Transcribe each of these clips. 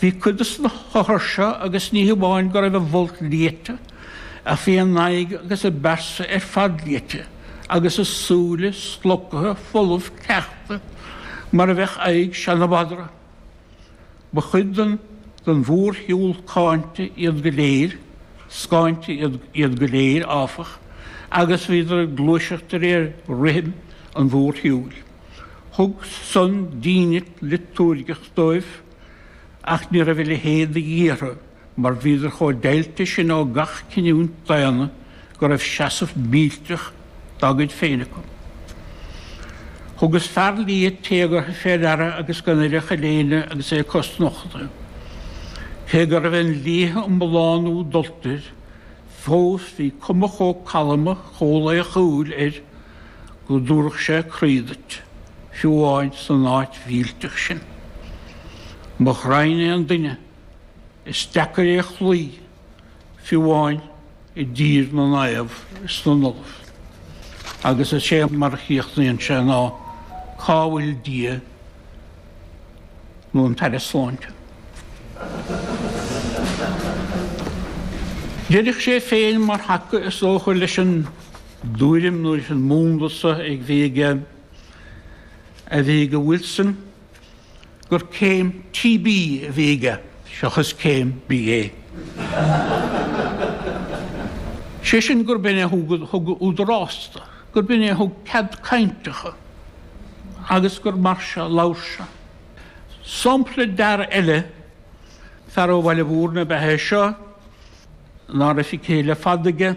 Bhí cuid de sna hothair seo agus ní hamháin go raibh a bhfolt liaite ach bhí a n-aghaidh agus a bpearsa ar fad liaite agus a súile slocaithe folamh cleachta mar a bheadh aghaidh seana-mhadra. Ba chuid den den mhór-shiúl cáinte iad go léir, scáinte iad go léir, áfach, agus bhíodar ag gluaiseacht de réir rithim an mhór-shiúil. Thug san dínit liotúirgeach dóibh, ach ní raibh a leithéid de dhíth orthu mar bhíodar chomh deighilte sin ó gach cinniúint daonna go raibh seasamh millteach dá gcuid féin acu. Thugas fear liath téagartha fé ndeara agus gan air ach a léine agus é cosnochta. Cé go raibh an liathadh iomlán úd dulta air, fós bhí cuma chomh calma, chomh laochúil air, go dtabharfadh sé croí duit, fiú amháin san áit mhillteach sin. Mo ghraidhn é an duine, is deacair é a chloí, fiú amháin i dtír na naomh is na n-ollamh. Agus is é mar a chríochnaíonn sé ná, Cá bhfuil Dia nó an tAire Sláinte? Deireadh sé féin mar thaca is dócha leis an dtuairim nó leis an múnla sa a bhí aige a bhí ag Wilson gur céim TB a bhí aige seachas céim BA. Sé sin gurb in é thug údarás dó, gurb in é thug cead cainte dhó agus gur mar seo a labhair sé. Sampla d'fhear eile, fear ó Bhaile Mhúirne ab ea é seo, ná raibh a chiall ar fad aige,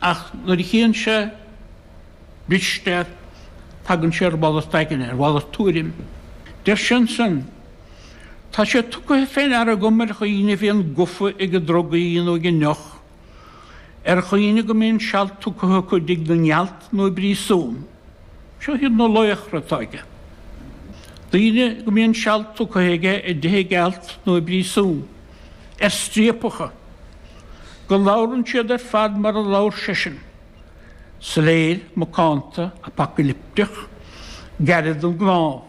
Ach nuair a chíonn sé Risteard tagann sé ar mhalairt aigne, ar mhalairt tuairim. Deir sé ansin, 'Tá sé tugtha fé ndeara agam ar dhaoine a bhíonn gofa ag drugaí nó ag an ndeoch, ar dhaoine go mbíonn seal tugtha acu i dtigh na ngealt nó i bpríosún. Seo iad na laochra atá aige. Daoine go mbíonn seal tugtha aige i dtigh na ngealt nó i bpríosún. ar striapacha, go labhrann siad ar fad mar a labhair seisean, soiléir, macánta, apacailipteach, gairid don gcnámh.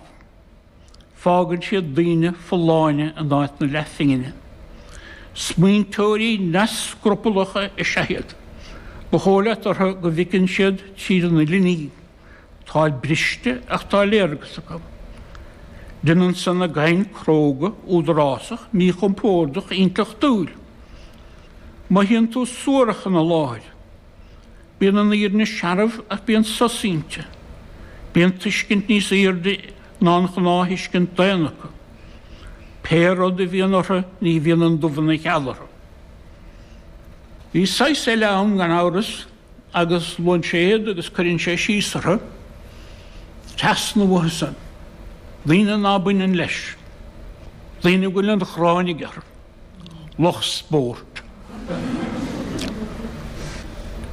Fágann siad daoine folláine in áit na leathphingne. Smaointeoirí neamhscrupallacha is ea iad. Ba dhóigh leat orthu go bhfeiceann siad tríd an uile ní. Táid briste ach tá léargas acu. Déanann san a gcaint cróga údarásach míchompordach intleachtúil. Mothaíonn tú suarach ina láthair. Bíonn an fhírinne searbh ach bíonn sos inti. Bíonn tuiscint níos aoirde ná an ghnáth-thuiscint daonna acu. Pé rud a bhíonn orthu ní bhíonn an dubh ina gheal orthu. Bhí saghas eile ann gan amhras. agus luann sé iad agus cuireann sé síos orthu, trasna uathu san, daoine ná baineann leis, daoine a bhfuil an ghráin aige orthu, lucht spóirt.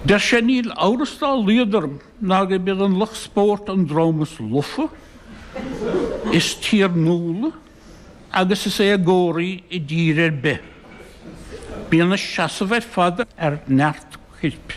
Deir sé, Níl amhras dá laghad orm ná gurb iad an lucht spóirt an dream is lofa, is tiarnúla, agus is éagóraí i dtír ar bith. Bíonn a seasamh ar fad ar neart coirp.